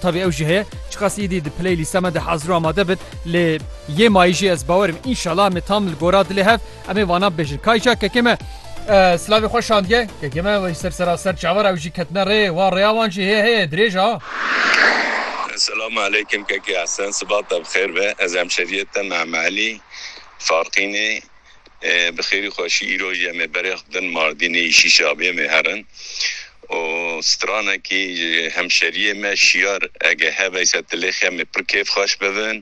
Tavî ew jî heye çiqas îdî di play lîsta me de hazir û amade bit lê yê mayî jî ez bawer im înşala em ê tam li gora dilê hev em ê vanan bibêjin. Kayca kekê me silavê xwe şandiye kekê me wey ser sera ser çavar ew jî ketine rê wa rêya wan jî hê heye dirêj a. Selam aleykim kekê Esen sibata bi xêr be ez hemşeriyê te Mehme Elî Faqînê. Bi xêrî xweşî îro jî em ê berêxd bin Mardînê yî Şîşabiyê mê herin û stranekî ji hemşeriyê me Şiyar ege hebe ser Tilêxê em ê pir kêfxweş bibin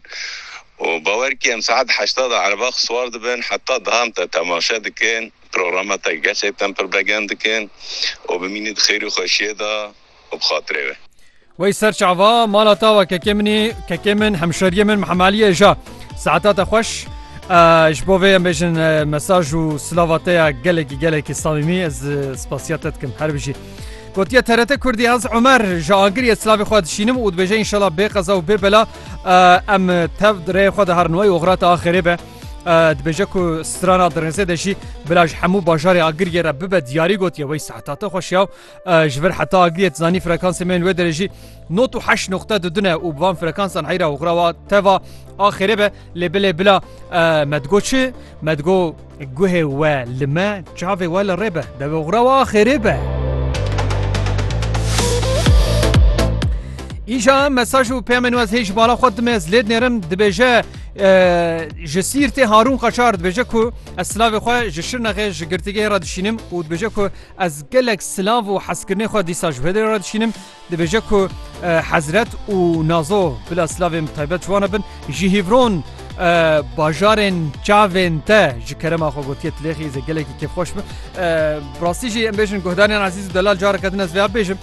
û bawer kî em saet heşta de erebax siwar dibin heta daham te temaşe dikin programa te gerçekten pir begend dikin û bimînî di xêrî xweşiyê de. û bi xatirê ve. Wey ser çava mala ta wa kekê minî kekê min hemşeriyê min Mihemaliyê ja saeta te xweş ji bo vê em bêjin mesaj û silava te ya gelekî gelekî samîmî ez spasiya te dikim her bijî. Gotiye TRT Kurdî ez Omer ji agiriye silavê xwe dişînim û dibêje înşallah bê qeza û bê bela em tev rêyê xwe de herin wey oxrata axirê be. dibêje ku strana dirêzê de jî bila ji hemû bajarê agiriyê re bibe diyarî gotiye wey saeta te xweşiya Ji vir heta agiriyê tu zanî frekansê me yên wê derê jî not û heşt noqte du dune û bi van frekansan heyra û xirawa teva axêrê be lê bilê bila me digo çi me digo guhê we li me çavê we li rê be devê xirawa axêrê be. Îja mesaj û peyamên wez hêj bala xwe dime ez lê dinêrim dibêje ji sîrtê harûn qaçar dibêje ku ez silavê xwe ji şirnexê ji girtîgehê re dişînim û dibêje ku Ez gelek silav û hezkirinê xwe dîsa ji hêdê re dişînim. Dibêje ku Hezret û Nazo bila silavên taybet ji wan re bin. Ji Hîvron bajarên çavên te ji kerema xwe gotiye tilêxî zê gelekî kêfxweş bi. Bi rastî jî em bêjin guhdarên ezîz û delal careke din ez vêya bêjim.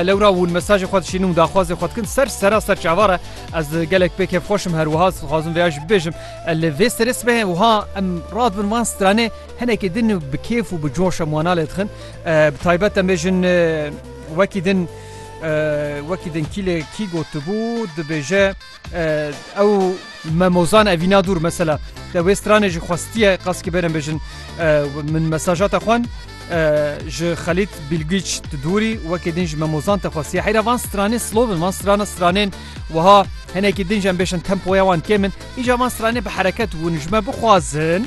Lewra win mesajê xwe dişînim û daxwazê xwe dikin ser sera ser çava re ez gelek pê kêfxweşim her wiha dixwazim vêya jî bibêjim. Li vê serê sibehê wiha em radibin van stranê Hinekî din bi kêf û bi coş em wana lê dixin. Bi taybet em bêjin wekî din wekî din kî lê kî gotibû dibêje ew me mozan evîna dûr mesela te wê stranê jî xwestiye qas ki bêrin bêjin min mesaja te xwan ji xelît bîlgîç tu dûrî wekê din ji me mozan te xwestiye heyra van stranê slobin van strana stranên wiha hinekî din jem bêşin tempoya wan kêmin îca van stranê bi hereket hûn ji me bixwazin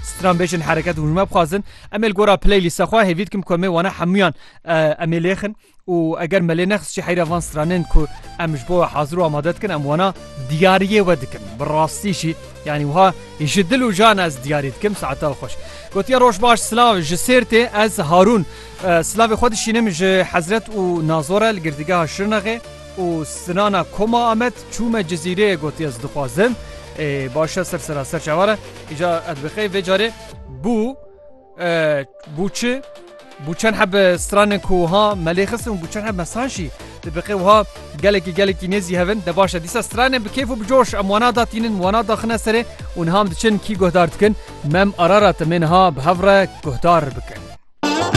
Stran bêjin hereket û hûnme bixwazin em ê li gora playlîsta xwe hêvî dikim ku em ê wana hemûyan eh, em ê lêxin û eger me lê nexis jî heyra van stranên ku em ji bo hazir û amade dikin em wana diyariyê we dikin bi rastî jî yanî wiha ji dil û jan ez diyarî dikim saeta xweş gotiye roj baş silav ji sêrtê ez harûn eh, silavê xwe dişînim ji hezret û nazore li girdigeha şirnaxê Û Sinana Koma Amed çû me Cizîreyê gotiye ez dixwazim ê başe ser sera ser çavar e îca ez dibixeyê vê carê bû bû çi bû çend heb stranên ku ha melê xistin bû çend heb mesan şî dibixê wiha gelekî gelekî nêzî hevin de başe dîsa stranên bi kêf û bi coş em wana da tînin wana daxine serê û niha em diçin kî guhdar dikin mem arara te mêniha bi hev re guhdar bikin.